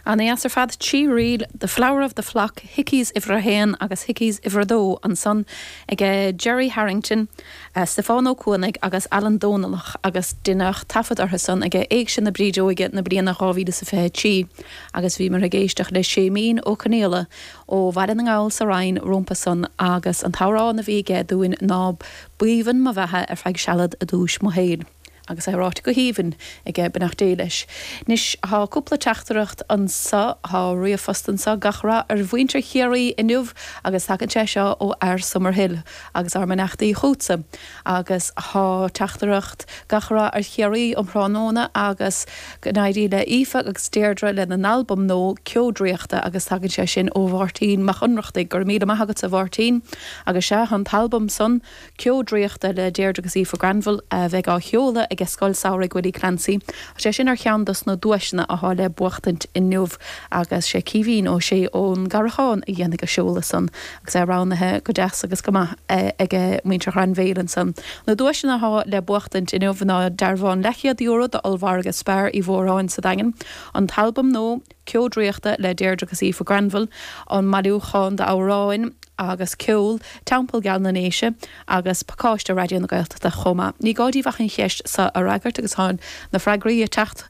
Ana dheas ar fad, trí ríl, The Flower of the Flock, Hickeys uimhir a haon agus Hickeys uimhir a dó ansan ag Gerry Harrington, Stiofán Ó Cuanaigh agus Ailean Dónallach agus deineadh taifead orthu san ag Éigse na Brídeoige na bliana dhá mhíle is a fiche trí agus bhíomar ag éisteacht le Séimín Ó Conaola ó Bhaile na nGall sa Rinn rompu san agus an t-amhrán a bhí aige dúinn ná B'aoibhinn mo bheatha ar feadh sealad' a dúis' mo shaoil'. Agus é ráite go haoibhinn aige, beannacht Dé leis. Anois thá cúpla teachtaireacht anso, thá ríomhphost anso, gach rath ar mhuintir Chiarraí inniu agus tagann sé seo ó fhear Summerhill agus ár mbeannachtaí chútsa. Agus thá teachtaireacht gach rath ar Chiarraí um thráthnóna agus go n-éirí le Aoife agus Deirdre lena n-albam nua Ceo Draíochta agus tagann sé sin ó Mháirtín Mac Ionnrachtaigh. Go raibh míle maith agatsa Mháirtín. Agus sea, thá an t-albam san. Ceo draíochta le Deirdre agus Aoife Granville a bheidh á sheoladh ag Scoil Samhraidh Willie Clancy. Tá sé sin ar cheann dos na duaiseanna atá le buachtaint inniu agus sé Caoimhín Ó Sé ón gCarrachán a dhéanfaidh an seoladh san agus é roghnaithe go deas agus go maith ag muintir Ghrainbhéil ansan. Na duaiseanna atá le buachtaint inniu ná dearbhán leathchéad euro d'Ollmhargadh Spar Uí Mhóráin sa Daingean, an t-albam nua. Ceo Draíochta le Deirdre agus Aoife Granville, an bailiúchán d'amhráin agus ceol, Teampall Geal na nDéise, agus pacáiste Raidió na Gaeltachta chomh maith. Ní gá díbh ach an cheist seo a fhreagairt agus tá na freagraí ag teacht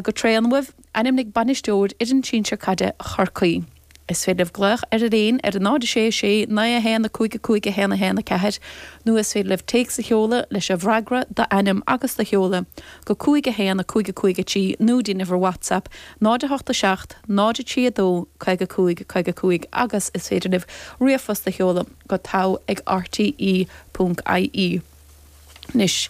go tréan uaibh, Ainmnigh bainisteoir fhoireann sinsir caide Chorcaí. Is féidir libh glaoch ar líon ar a 0 6 6 9 1 5 5 1 1 4 nó is féidir libh téacs a sheoladh leis an bhfreagra, d'ainm agus do sheoladh, go 51 55 3 nó dtín uimhir WhatsApp 087 032 55 55 agus is féidir libh ríomhphost a sheoladh go tar ag RTÉ.ie. Anois,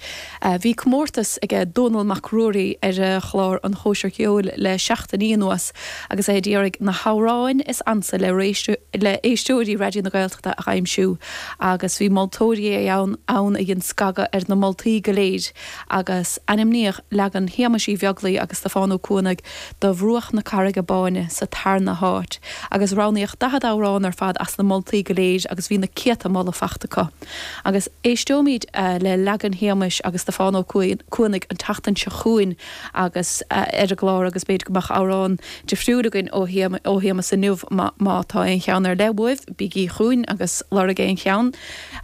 bhí comórtas ag Dónall Mac Ruairí ar chlár an Chóisir Cheoil le seachtainí anuas agus é ag iarraidh na hamhráin is ansa le le éisteoirí Raidió na Gaeltachta a aimsiú agus bhí moltóirí ann a dhein scagadh ar na moltaí go léir agus ainmníodh leagan Shéamuis Uí Bheaglaoi agus Stiofán Ó Cuanaigh de 'Bhruach na Carraige Báine' sa tarna háit, agus roghnaíodh 40 amhrán ar fad as na moltaí go léir agus bhí na céadta moladh faighte acu. Agus éisteoimid le leagan Shéamuis agus Stiofán Ó Cuanaigh an tseachtain seo chugainn agus ar an gclár agus b'fhéidir go mbeadh amhrán difriúil againn ó Shéamus inniu, má tá aon cheann ar leith uaibh, bígí chugainn agus lorgaíg aon cheann!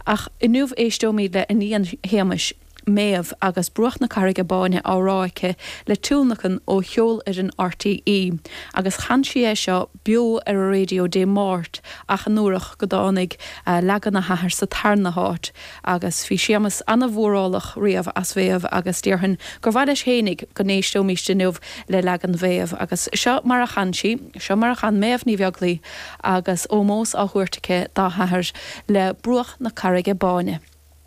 Ach inniu éisteoimid le iníon Shéamuis. Méabh, agus Bruach na Carraige Báine á rá aici le tionlacan ó cheolfhoireann RTÉ, agus chan sí é seo beo ar an raidió Dé Máirt ach anuarach go dtáinig leagan a hathar sa tarna háit, agus bhí Séamas ana-mhórálach riamh as Mhéabh agus déarfainn gur mhaith leis fhéinig go n-éisteoimíst inniu le leagan Mhéabh, agus seo mar a chan sí, seo mar a chan Méabh Ní Bheaglaoich agus ómós á thabhairt aici dá hathair le Bruach na Carraige Báine.